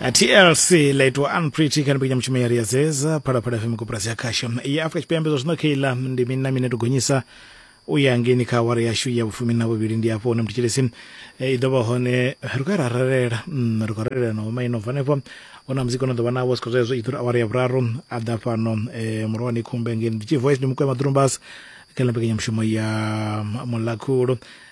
A tlc laitwa unpretty kana pikita mutshumeli ya ri ya zeza phalaphala fm koporasi ya khasho ya afrika tshipembe zwa zwino kha iḽa ndi mini na mini ya tou gonyisa u ya ngeni kha awara yashu ya vhufumi na vhuvhili ndi afho hune mutshitshilisi i ḓo vha hone ri khou ya ra ralela mm, ri khou ralela na homa ino fanefho hu na muzika ono ḓo vha navho sikho zwezwo i ḓo ri awara ya vhuraru a ḓa fhano eh, murohani khumbe ngeni ndi tshi voice ndi mukwema durumbas kha ḽa mbekanyamushumo ya mulakhulo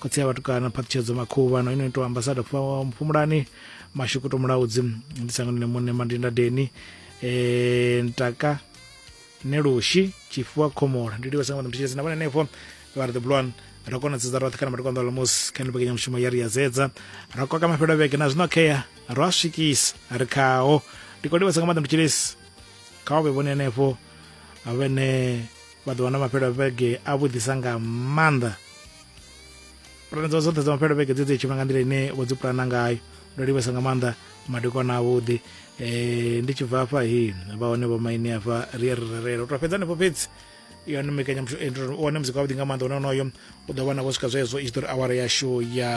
khotsi ya vhatukana phaṱhutshedzo makhuvha na ino itiwa ambasada mphumulani mashukuto mulaudzi ndi sangano ne muṋe mandinda deni um ntaka nelushi tshifuwa khomola ndi livha sangano mthitshedzi na vhone henefo vha ri the blue one ra kona dzedza roṱhe kana matikwa nḓa lamusi kha nipekenya mushumo ya ri ya dzedza ra koka mafhelo vhege na zwino khea ro a swikisa ri khaho ndi kho livhasa nga maḓa mthitshedzi kha vha vhe vhone henefho vhene maḓuvha na mafhelo vhege a vhuḓisa nga maanḓa pulane dzawe dzoṱhe dza mafhelo vhege dzi dzi tshima nga nḓila ine vho dzi pulana ngayo ndo livhesa nga maanḓa madekwana avhuḓi um ndi tshi bva afha hi vha hone vho maine afha ri ye ri rerela u to fhedza hanefho fhedzi yone mbekanyamushumo eh, wane muzika wavhuḓi nga maanḓa une onoyo u ḓo vhona vho swika zwezwo i tshi ḓo ri awara yashu ya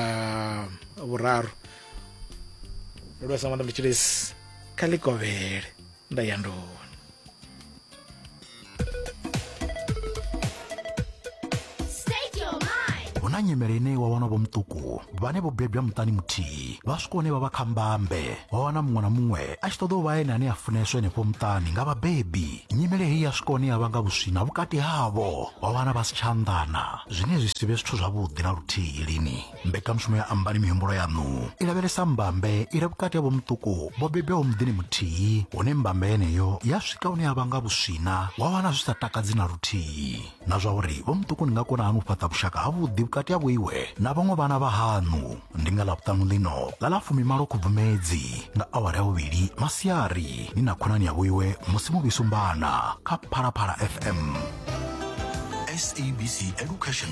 vhuraru ndo livhesa nga maanḓa mutshilisi kha ḽikovhele nda ya nḓuni hu na nyimele ine wa wana vho muṱuku vhane vho bebwa muṱani muthihi vha swika hune vha vha kha mbambe wa wana muṅwe na muṅwe a tshi ṱoḓa u vha ene ane a funeswa henefho muṱani nga vhabebi nyimele heyi ya swika hune ya vhanga vhuswina vhukati havho wa wana vha si tsha anḓana zwine zwi si vhe zwithu zwavhuḓi na luthihi lini mbekanyamushumo ya ambani mihumbulo yaṋu i lavhelesa mbambe i re vhukati ha vhomuṱuku vho bebwaho muḓini muthihi hune mbambe yeneyo ya swika hune ya vha nga vhuswina wa wana zwi sa takadzi na luthihi na zwa uri vhomuṱuku ni nga kona hani u fhaṱa vhushaka havhuḓi vhukati ha vhoiwe na vhaṅwe vhana vha haṋu ndi nga ḽavhuṱanu ḽino ḽa ḽa fumimalo khubvumedzi nga awara ya vhuvhili masiari ni na khonani ya vhoiwe musi muvhisumbana kha phalaphala fm sabc education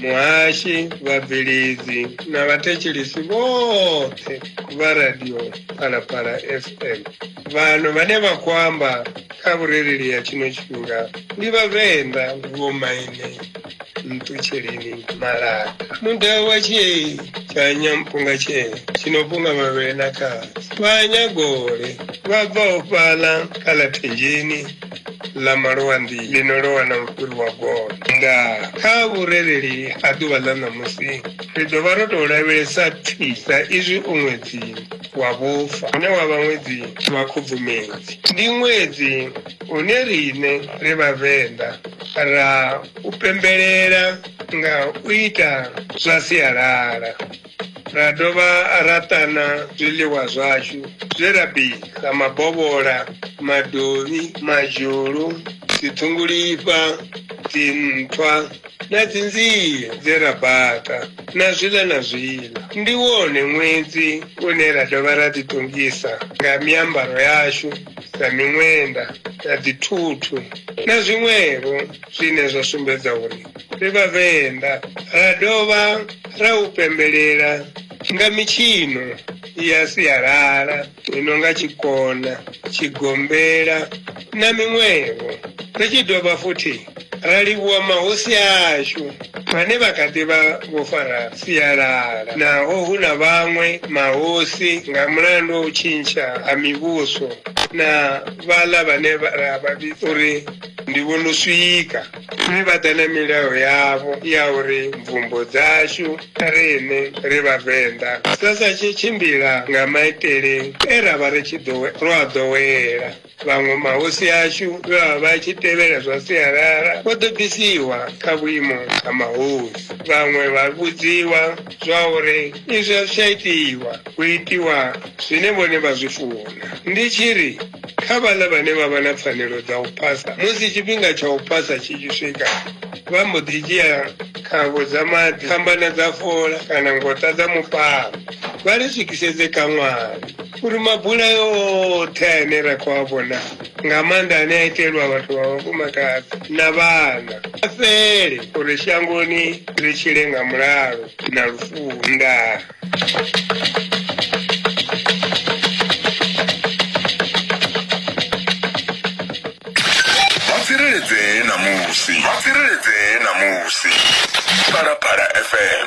muhashi vhabveledzi na vhathetshelesi vhoṱhe vha radio phalaphala fm vhano vhane vha khou amba kha vhurereli ya tshino tshifhinga ndi vhavenḓa vhomaine nṱutsheleni malaka muda wa tshee tsha nyampunga tshee tshinopunga mavhele na khasi vhanyagole vha bvaho fhaḽa kha ḽa thenjeni ḽa malwanḓi ḽi no lowa na mufhuri wa gondo nga kha vhurereli ha ḓuvha ḽa ṋamusi ri ḓo vha ro tou lavhelesa thi sa izwi u ṅwedzi wa vhufa une wa vha ṅwedzi wa khubvumedzi ndi ṅwedzi une riṋe ri vhavenḓa ra u pembelela nga u ita zwa sialala ra dovha ra ṱana zwiḽiwa zwashu zwe ra bika mabovhola madovhi madzhulu dziṱhungulifha dzinthwa na dzinzie dze ra baka na zwiḽa na zwiḽa ndi wone ṅwedzi une ra dovha ra ḓiṱongisa nga miambaro yashu na miṅwenda na dzithuthu na zwiṅwevho zwine zwa sumbedza uri Ri Vhavenḓa ra dovha ra u pembelela nga mitshino ya sialala i no nga tshikona, tshigombela na miṅwevho. Ri tshi dovha futhi ra livhuwa mahosi ashu vhane vha kha ḓi vha vho fara sialala naho hu na vhaṅwe mahosi nga mulandu wa u tshintsha ha mivhuso na vhaḽa vhane ra vha vhidza uri ndi vho no swika. Mme vha ḓa na milayo yavho ya uri mvumbo dzashu riṋe ri Vhavenḓa dza sa tshe tshimbila nga maitele e ra vha ri tshi ro a ḓowela. Vhaṅwe mahosi ashu vhe vha vha tshi tevhela zwa sialala vho ḓo bvisiwa kha vhuimo ha mahosi, vhaṅwe vha vhudziwa zwauri izwi a zwi tsha itiwa hu itiwa zwine vhone vha zwi funa ndi tshi ri kha vhaḽa vhane vha vha na pfanelo dza u phasa musi tshifhinga tsha u phasa tshi tshi swika vha mbo ḓi dzhia khavho dza maḓi fhambana dza fola kana ngota dza mupalo vha ri swikisedze kaṅwani uri mabulayo oṱhe ane ra khou a vhona nga maanḓa ane a itelwa vhathu vha vhafumakadzi na vhana a fhele uri shangoni ri tshile nga mulalo na lufuhu ndaa tsireledzee ṋamusi vha tsireledzee ṋamusi phalaphala fm